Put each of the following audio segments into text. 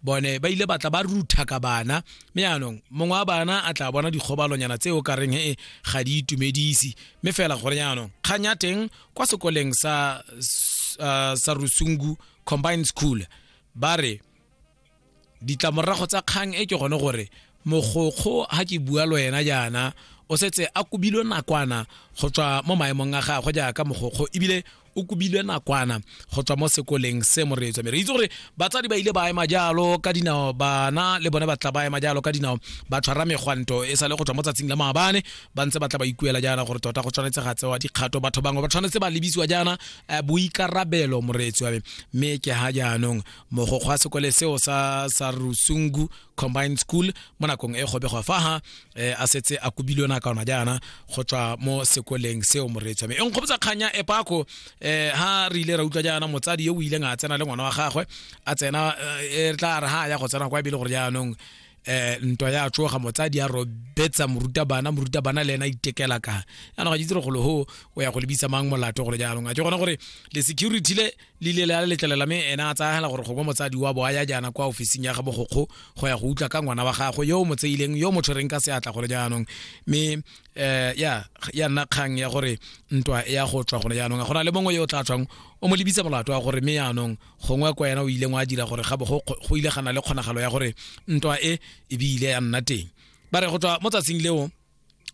bone ba ile batla ba rutha ka bana mme yaanong mongwe wa bana a tla bona dikgobalonyana tse o kareng e ga di itumedise mme fela gore yaanong kgang ya teng kwa sekoleng sa uh, sa rusungu combined school ba re ditlamorago tsa kgang e ke gone gore mogokgo ha ke bua lo yena jaana o setse a kobilwe nakwana go tswa mo maemong a gagwe jaaka mogokgo ebile o kobilwe nakwana go tswa mo sekoleng se moreetswa mme re itse gore batsadi ba ile ba ema jalo ka dinao bana le bone ba tla ba ema jalo ka dinao ba tshwara megwanto e sa le go tswa mo tsatsing la maabane ba ntse ba tla ba ikuela jaana gore tota go tshwanetse ga tsewa dikgato batho bangwe ba tshwanetse ba lebisiwa jaana eh, boikarabelo moreetsi wa me mme ke ha jaanong mogokgo wa sekole seo sa sa rusungu combined school mo nakong e gobegwa fa ha eh, a setse a kubilwe na ka ona jaana go tswa mo sekoleng seo moreetsi mme e nkgopotsa kganya e pako eh, ha re ile ra utlwa jaana motsadi yo o ileng a tsena le ngwana wa gagwe a tsena eh, e tla re ha ya go tsena kwa ebile gore jaanong eh ntwa ya tsoga motsadi ya robetsa morutabana morutabana le ena itekela ka yana ga itse gore golo ho o ya go lebisa mang molato gore jaanong a ke gona gore le security le le ile la letlelela mme ena a tsayagela gore gongwe motsadi wa bo a ya jaana kwa ofising ya ga bogokgo go ya go utlwa ka ngwana wa gagwe yo o mo tseileng yo o mo tshwereng ka seatla gone jaanong mme um ya ya nna kgang ya gore ntwa ya go tswa gone jaanong a go na le mongwe yo o tla tswang o mo lebitsa molato wa gore mme jaanong gongwe kwa ena o ileng wa dira gore ga bo go ile ga na le kgonagalo ya gore ntwa e ebile ya nna teng ba re go tswa mo tsatsing leo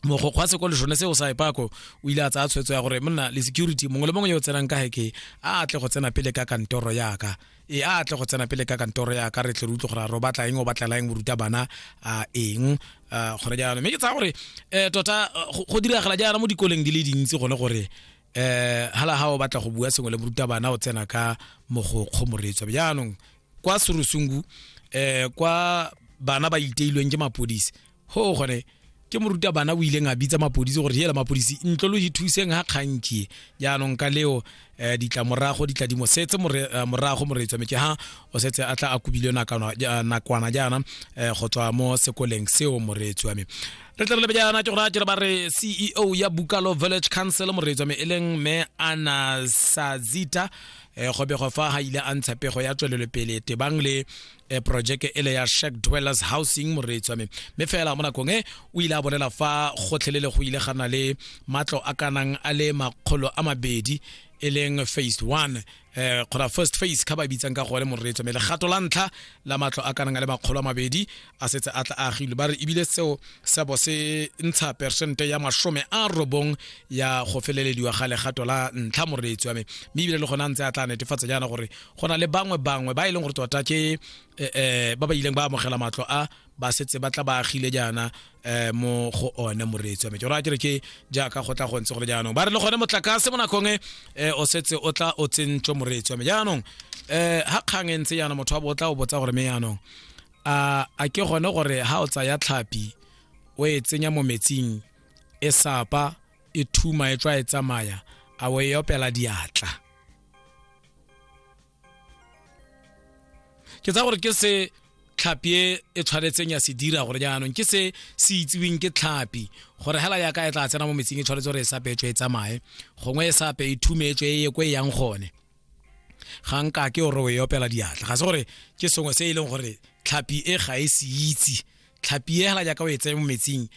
mogokgo wa sekolo sone seo sa epako o ile a tsaya tshwetso ya gore monna le security mongwe le mongwe yo o tsenang ka heke a atle go tsena pele ka kantoro yaka e a atle go tsena pele ka kantoro yaka re tle re utlwe gore a re o batla eng o batlela eng boruta bana a eng gore jaanong mme ke tsaya gore um tota go diragala jaana mo dikoleng di le dintsi gone gore um hala ga o batla go bua sengwe le boruta bana o tsena ka mogokgo moreetswa jaanong kwa serusungu um kwa bana ba iteilweng ke mapodisi ho gore ke moruta bana o ileng a bitsa mapodisi gore yela mapodisi ntlo lo ithuseng ha kgankie jaanong ka leo um ditlamorago ditladimo setse eh, morago moreetswa metse ha o setse a tla a kobilwe nakwana jaana um go tswa mo sekoleng seo moreetsi wa me re tle re lebe jaana ke gore a jere ba re ceo ya bukalo village council moreetsi wa me e leng me anasazita um go bego fa ga ile a ntsha pego ya tswelelopele tebang le e projeke ele ya shack dwellers housing moreetsi wa me mme fela mo nakong e o ile a bolela fa gotlhelele go ile gana le matlo a kanang a le makgolo a mabedi e leng phase one eh kgona first phase ka ba bitsang ka gone moreetso mme legato la ntlha la matlo a kanang a le makgolo a mabedi a setse a tla a agilwe ba re ebile seo sa bo se ntsha percente ya masome a robong ya go felelediwa ga legato la ntlha moreetsi wa me mme ebile le gone a ntse a tla netefatsa jaana gore go na le bangwe bangwe ba e leng gore tota ke um ba ba ileng ba amogela matlo a ba setse ba tla ba agile jaana um mo go one moreetsi wa me ke gore a kere ke jaaka go tla go ntse go le jaanong ba re le gone motlakase mo nakong e um o setse o tla o tsentswe moreetsi wa me jaanong um ga kgang e ntse jaana motho wa bo o tla o botsa gore me jaanong a a ke gone gore ha o tsaya tlhapi o e tsenya mo metsing e sapa e thuma e tswa e tsamaya a o e opela diatla ke tsa gore ke se tlhapi e e tshwanetseng ya se dira gore jaanong ke se se itsiweng ke tlhapi gore hela yaka e tla tsena mo metsing e tshwanetse gore e sa petswe e tsamaye gongwe e sape e thumetswe e ye ko e yang gone ga nka ke gore o e opela diatla ga se gore ke sengwe se e leng gore tlhapi e ga e se itse tlhapi e hela jaaka o e tseye mo metsing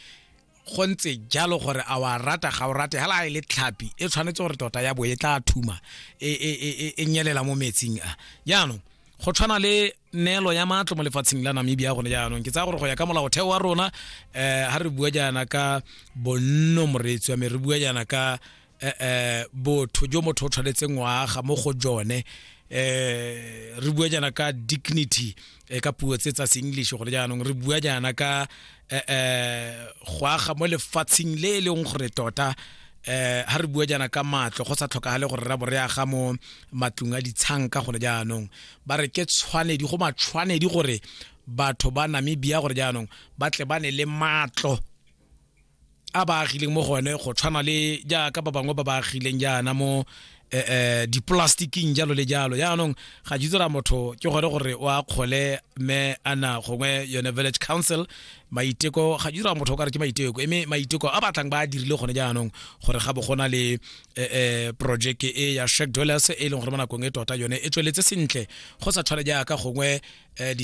go ntse jalo gore a wa rata ga o rate hela e le tlhapi e tshwanetse gore tota ya bo e tla thuma e, e, e, e nyelela mo metsing a jaanong go tshwana le neelo ya matlo mo lefatsheng la namibia gone jaanong ke tsaya gore go ya ka molaotheo wa rona um eh, ga re bua jaana ka bonno moreetsi wa me re bua jaana ka eh, eh, botho jo motho o tshwanetseng waga mo go jone eh re bua jana ka dignity eh, ka puo tse tsa English gore jaanong re bua jana ka eh, eh go aga mo lefatsheng le e leng gore tota eh ha re bua jana ka matlo go sa tlhokagale gore ra bore aga mo matlung a ditshang ka gore jaanong ba re ke tshwanedi go matshwanedi gore batho ba Namibia gore jaanong ba tle ba ne le matlo a ba agileng mo go one go tshwana le jaaka ba bangwe ba ba agileng jaana mo eh, eh, dipolastiking jalo le jalo jaanong ga ke tsela motho ke gone gore o a kgole mme ana gongwe yone village council maiteko ga ke tsela motho o ka re ke maiteko eme maiteko a batlang ba a dirile gone jaanong gore ga bo go na le eh, eh, project e ya shack dwellers e leng gore mo nakong e tota yone e tsweletse sentle go sa tshwane jaaka gongwe eh, di